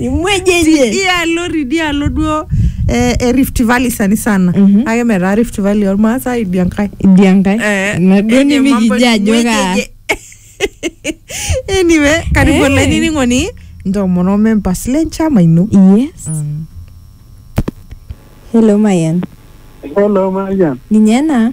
ing'ueji enye idialo tidialo duo eh, e Rift Valley sani sana Mhm. ake metaa Rift Valley ormaasai idia nkae idia nkae Eh, ina duo enye mambo nimikijo ajo ing'ueji kaa enye. anyway karibu Eh. olainining'oni ntomono members le nchama ino yes hello mayan Hello, Marian. ninye ena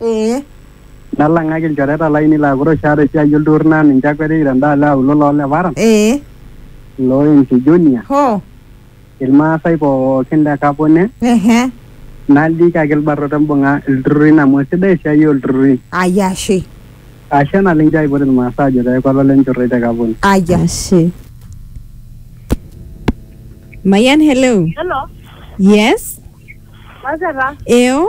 Ee. Nalang'aki ilchoreta laainei laa kure oshi aata esiai olturrur naa ninche akwetiki tendaalo e aulo loo Leparan, Ee. loo Enki Junior, Hoo. Ilmaasai pooki le Kapone, Ehe. naliki ake ilbarnot embung'a ilturrurrin amu eisidai esiai oo lturrurri. Ai ashe. Ashe naleng nchoo aipot Ilmaasai aajo pee eeku olole enchorroi te Kapone. Ai ashe. Mayian hello. Hello. Yes. Maseta. Eo.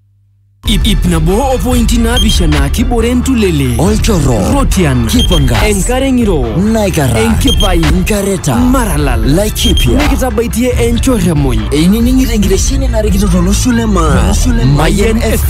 Ip, ip nabo o pointi naapishana kibore ntulele olchorro rotian kipangas enkare ng'iro naikara enkipai nkareta maralal laikipia nikitabaitie enchorremuny einining'ito enkitesheni narikito tolosho le maa Mayian FM